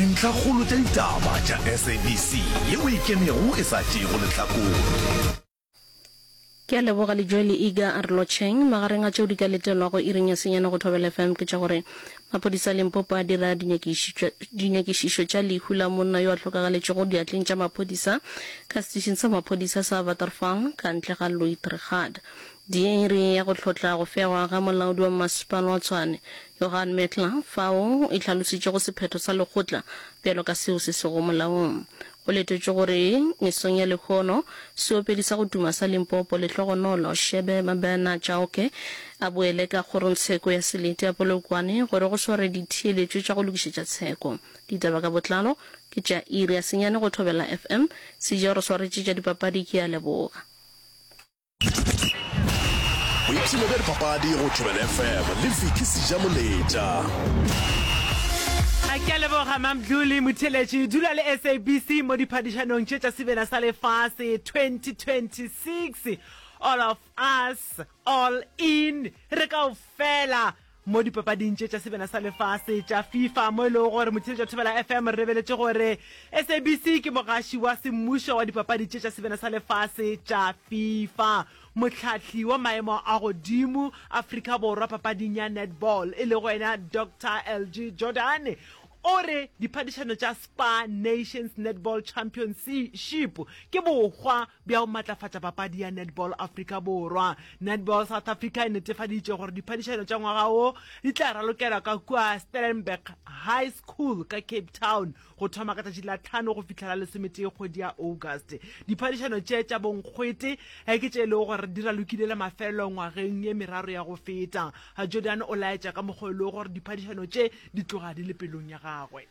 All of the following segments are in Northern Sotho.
Dintlhakgolo tša ditaba tša SABC ye o e kenego e sa tšeego lehlakore. Ke a leboga le Joel Iga a re lotšheng. Magareng a tšeo di ka letelwago iring ya senyane go Thobela FM ke tša gore maphodisa a Limpopo a dira dinyakišišo tša lehu la monna yo a hlokagaletšego diatleng tša maphodisa ka setišing sa maphodisa sa Waterval ka ntle ga Louithrigade. Diiri ya go hlotla go fegwa ga molaodi wa mmasepala wa Tshwane, Johan Metler, fao e hlalositšego sephetho sa lekgotla bjalo ka seo se sego molaong. Go letetšwe gore mesong ya lehono, seopedi sa go tuma sa Limpopo, Lehlogonolo Shebe Mabena Chauke, a boele ka kgorongtsheko ya Selete ya Polokwane gore go sware ditheeletšo tša go lokišetša tsheko. Ditaba ka botlalo ke tša iri ya senyane go Thobela FM. Sejeo re swaretše tša dipapadi ke a leboga. boipshino bja dipapadi go tšhobele fm le fiki seja moletša a ke a leboga mamdlole motheletši dula le sabc mo diphadišanong tše tša sebela sa lefase 2026 all of us all in re kao fela Mo dipapading tše tša sebena sa lefase tša Fifa mo e lego gore Mothiletšo wa Thobela FM re rebeletše gore SABC ke mogaši wa semmušo wa dipapadi tše tša sebena sa lefase tša Fifa, mohlahli wa maemo a godimo Afrika Borwa papading ya netball e lego yena Doctor LG Jordan o re diphadišano tša Spar Nations Netball Championship ke bohwa bja go matlafatša papadi ya Netball Afrika Borwa. Netball South Africa e netefaditše gore diphadišano tša ngwaga wo di tla ralokelwa ka kua Stellenberg High School ka Cape Town go thoma ka tšatši la tlhano go fihla la lesometee kgwedi ya August. Diphadišano tše tša bonkgwete eh, ke tše e lego gore di ralokile le mafelelo ngwageng ye meraro ya go feta. Jordan o laetša ka mokgwa e lego gore diphadišano tše di tloga di le pelong ya gagwe.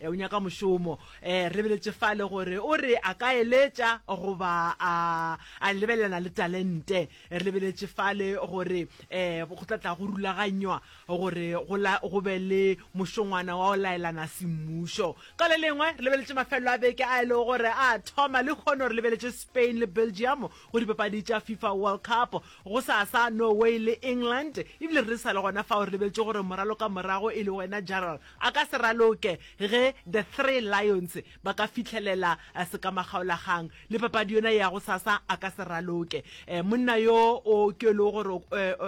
E, o nyaka mošomo. E, re beletše fale gore o re a ka eletša goba a, a lebelelana le talente. Re lebeletše fale gore e, go tla tla go rulaganywa gore go, la, go be le mošongwana wa go laelana semmušo. Ka le lengwe, re lebeletše mafelelo a beke a e lego gore a thoma. Lehono re lebeletše Spain le Belgium go dipapadi tša FIFA World Cup, gosasa Norway le England. Ebile re sa le gona fao, re lebeletše gore moralo ka morago e le wena Jarl A ka se raloke ge The Three Lions ba ka fihlelela sekamagaolagang le papadi yona ya gosasa, a ka se raloke. Monna yo o ke yo e lego gore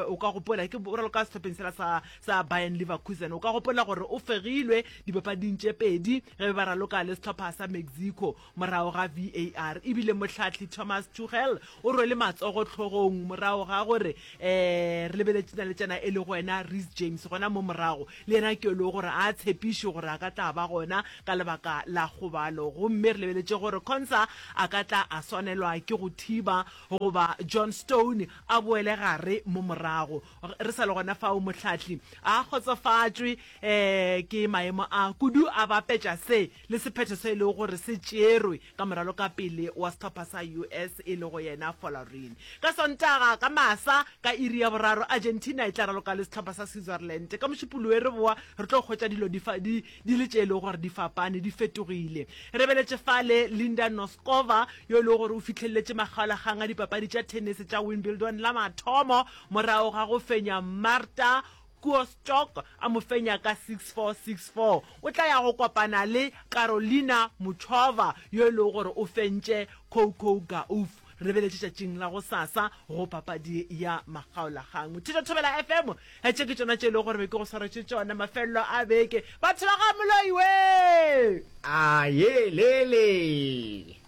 o ka gopola, ke bjalo ka sehlopheng sela sa sa Bayern Leverkusen, o ka gopola gore o fegilwe dipapading tše pedi ge be ba raloka le sehlopha sa Mexico. Morago ga VAR e bile mohlahli Thomas Tuchel o rwele matsogo hlogong morago ga gore re lebeletše na le tšena e le go wena Reece James gona mo morago le yena ke lo gore a tshepiše gore a ka tla ba gona ka lebaka la kgobalo gomme re lebeletše gore Konsa a ka tla a swanelwa ke go thiba goba John Stone a boele gare mo morago. Re sa le gona fao mohlahli a kgotsofatšwe ke maemo a kudu a bapetša se le sephetho se e lego gore se tšerwe ka moralo ka pele wa sehlopha sa US e lego yena Folarin. Ka Sontaga ka masa ka iri ya boraro, Argentina e tla raloka le sehlopha sa Switzerland. Ka Mošupologe re bowa re tlo hwetša dilo di fa, di, di le tše e lego gore di fapane, di fetogile. Re beletše fale Linda Noskova, yo e lego gore o fihlelletše makgaolakgang a dipapadi tša thenese tša Wimbledon la mathomo morago ga go fenya Marta Koostock a mo fenya ka six four, six four, o tla ya go kopana le Karolina Muchova yo e lego gore o fentše Coco Gauff. Re be le tšatšing la go sasa go papadi ya makgaolakgang. Theta Thobela FM, tše ke tšona tše e lego gore be ke go swaretše tšona mafelelo a beke. Batho ba ga Moloi wee! A ye le le!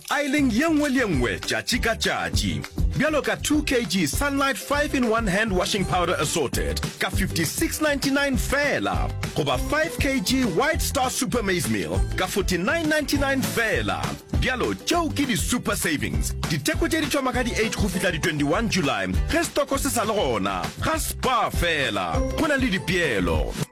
Aileng ye nngwe le ye nngwe tšatši ka tšatši. Bjalo ka 2 kg Sunlight 5 in 1 Hand Washing Powder Assorted ka 56.99 feela goba 5 kg White Star Super Maize Meal ka 49.99 feela. Bjalo tšeo ke di Super Savings. Ditheko tše di thoma ka di 8 go fihla di 21 July ge stoko se sa le gona. Ga Spar feela go na le dipeelo.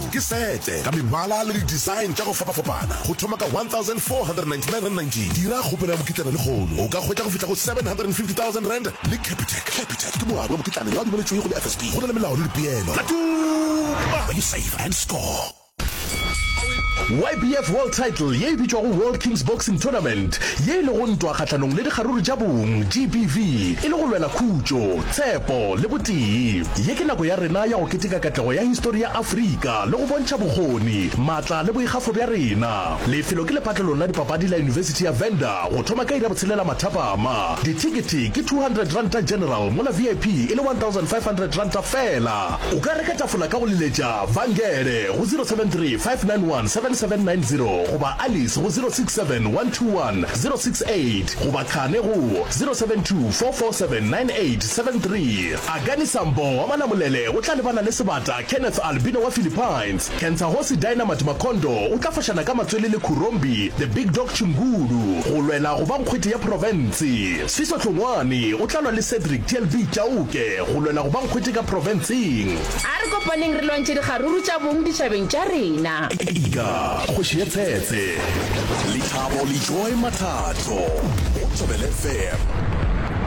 Ke sete ka mebala le di-design tša go fapafapana go thoma ka R1,499.19. Dira kgopelo ya mokitlana lehono o ka hwetša go fihla go R750,000 le Capitec. Capitec ke moabi wa mokitlane yo a dumeletšwego le FSB. Go na le melao le dipeelo. Tla tuma! When you save and score. YBF World Title ye e bitšwago World Kings Boxing Tournament ye e lego ntwa kgahlanong le dikgaruru tša bong, GBV, e le go lwela khutšo. Tshepo le botee. Ye ke nako ya rena ya go keteka katlego ya histori ya Afrika le go bontšha bokgoni, matla le boikgafo bja rena. Lefelo ke lephatlelong la dipapadi la Yunibesithi ya Venda go thoma ka iri ya botshelela mathapama. Dithekete ke R200 general mola VIP e le R1,500 fela. O ka reka tafola ka go leletša Vangele go 073 591 7790 goba Alice go 067 121 068. Connect goba qhane go 072 447 9873. Agani Sambo wa Malamulele o tla lebana le sebata Kenneth Albino wa Philippines. Kentsahosi Dynamite Makhondo o tla fošana ka matswele le Khurombi The Big Dog Chingulu go lwela go ba nkgwete ya profense. Siso Hlongwane o tla lwa le Cedric TLB Chauke go lwela go ba nkgwete ka profenseng. A re kopaneng re lwantšhe dikgaruru tša bong ditšhabeng tša rena. Iga, kgoši ye tsetse. Lethabo Lejoe Mathato, Botšobel FM.